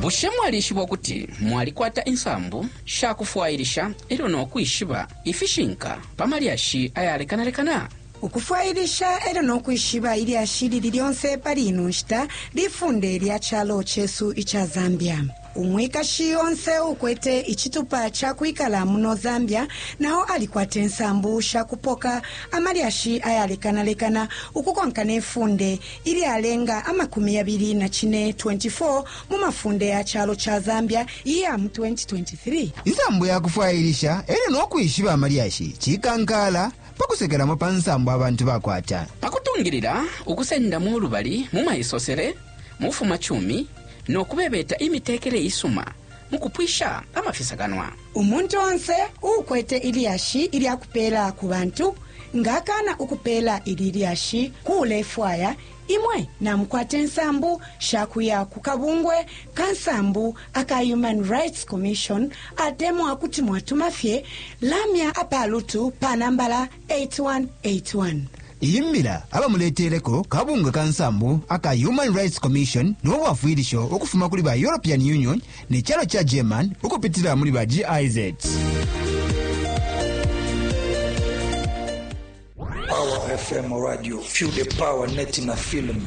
bushe mwalishiba ukuti mwalikwata insambu sha kufwailisha e lyo no kwishiba ifishinka pa malyashi ayalekanalekana ukufwailisha e lyo no kwishiba ilyashi lili lyonse pali ino nshita lifunde lya calo cesu ica zambia Umwikashi onse uukwete icitupa ca kwikala muno Zambia na o alikwate nsambu sha kupoka amalyashi ayalekanalekana ukukonka ne funde ilyalenga amakumi yabili na cine, 24 mu mafunde ya calo ca Zambia iya mu 2023. Insambu ya kufwailisha e lyo no kwishiba amalyashi cikankaala pa kusekelamo pa nsambu abantu bakwata. Pa kutungilila ukusendamo ulubali mu maisosele, mu bufumacumi, no kubebeta imitekele isuma mu kupwisha amafisakanwa. Umuntu onse uukwete ilyashi ilya kupeela ku bantu nga akaana ukupeela ili lyashi ku ulefwaya, imwe namukwata insambu sha kuya ku kabungwe ka nsambu aka Human Rights Commission atemwa kuti mwatuma fye lamya apalutu pa nambala 8181. Iyi mbila abamuleteleko kabungwe ka nsambu aka Human Rights Commission no bwafwilisho ukufuma kuli ba European Union ne calo ca German ukupitila muli ba GIZ. Power FM Radio, Feel the Power Net na Film.